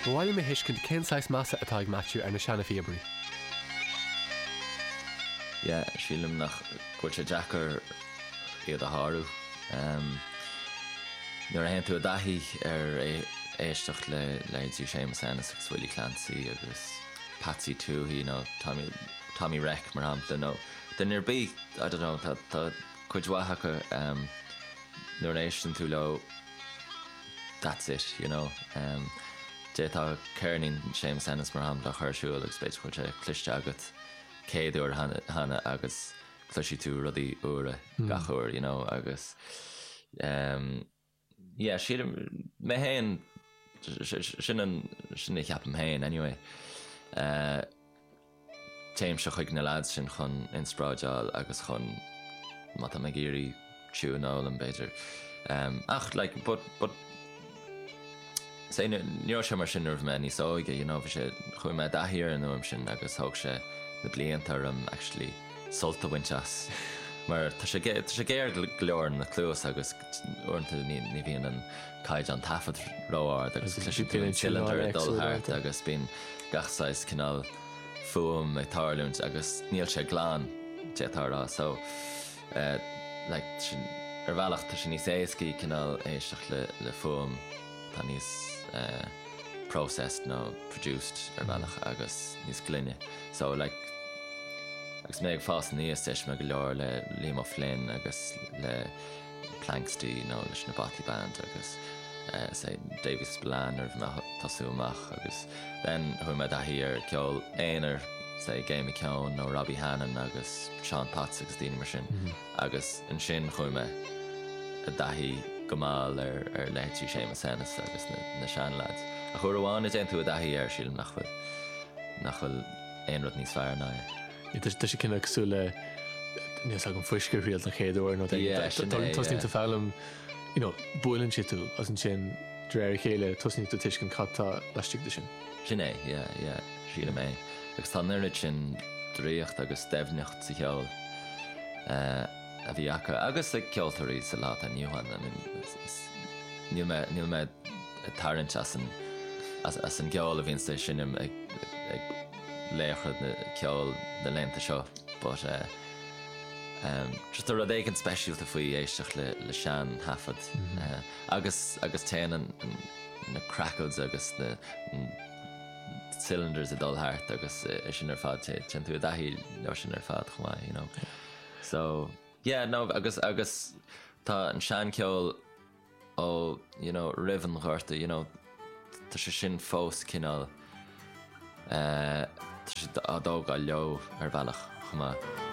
Ba mhaith liom a thuiscint cén saghas measa atá ag Maitiú ar na seana-phíobairí. yeah sílim go bhfuil sé deacair iad a shárú nuair a théann tú i dtaithí ar éisteacht le leithéidí Séamus Ennis agus Willie Clancy agus Patsy Touhey nó Tommy Tommy Reck mar shampla nó duine ar bith I don't know tá cuid mhaith acu nuair a éisteann tú leo that's it, you know. D'fhéadfadh ceirnín Séamus Ennis, mar shampla, a chur ar siúl agus b'fhéidir go bhfuil sé cloiste agat céad uair cheana agus cloisfidh tú rudaí úra gach uair, you know, agus yeah, sílim, mé féin, sin a cheapaim féin anyway. Téimse chuig na leaids sin chun inspráideáil agus chun, má táim ag iarraidh tiúin a fhoghlaim b'fhéidir. Ach like, but, but, say ní raibh sé mar sin nuair a bhí mé níos óige, you know, bhí sé, chuaigh mé i dtaithí ar an fhuaim sin agus thóg sé na blianta orm actually sult a bhaint as mar tá sé, tá sé géar go leor ar an gcluas agus. Uaireanta ní bhíonn an caighdeán taifeadta ró-ard agus bíonn sileandair ag dul thart agus bíonn gach saghas cineál fuaim ag tarlúint agus níl sé glan, d'fhéadfá a rá. So, like, ar bhealach tá sé níos éascaí cineál éisteacht le, le fuaim atá níos eh, processed nó produced ar bhealach agus níos glaine. So, like, agus mé ag fás aníos d'éist mé go leor le Liam O'Flynn agus le, Planxty nó leis an Bothy Band agus say Davy Spillane nuair a bhí mé ag tosú amach agus then chuaigh mé i dtaithí ar ceol aonair say Gay McKeon nó Robbie Hannan agus Seán Potts agus daoine mar sin agus ansin chuaigh mé i dtaithí go mall ar ar leithéidí Séamus Ennis agus na na seanleaids ach uair amháin a dtéann tú i dtaithí air sílim nach bhfuil nach bhfuil aon rud níos fearr ná é. Tá sé cosúil le, níl 's agam fuisce a thriail don chéad uair nó, tosnaíonn tú foghlaim, you know, buaileann sé tú agus ansin de réir a chéile tosnaíonn tú tuiscint cad tá laistigh de sin. Sin é, yeah, yeah, sílim é. Agus tá an oiread sin draíocht agus doimhneacht sa cheol a bhí acu agus ag ceoltóirí sa lá atá inniu ann. I mean, níl mé, níl mé ag tarraingt as an, as an gceol a bhíonns á sheinm ag, ag. laochra ceoil na laethanta seo but ehm just tá rud éigin speisialta faoi éisteacht le le seantaifead agus agus téann na crackles agus na cylinders ag dul thart agus é sin ar fad té- téann tú i dtaithí leo sin ar fad chomh maith you know so yeah no agus agus tá an seancheol ó you know roimh an ghorta you know tá sé sin fós cineál eh tá siad á dtógáil leo ar bhealach chomh maith.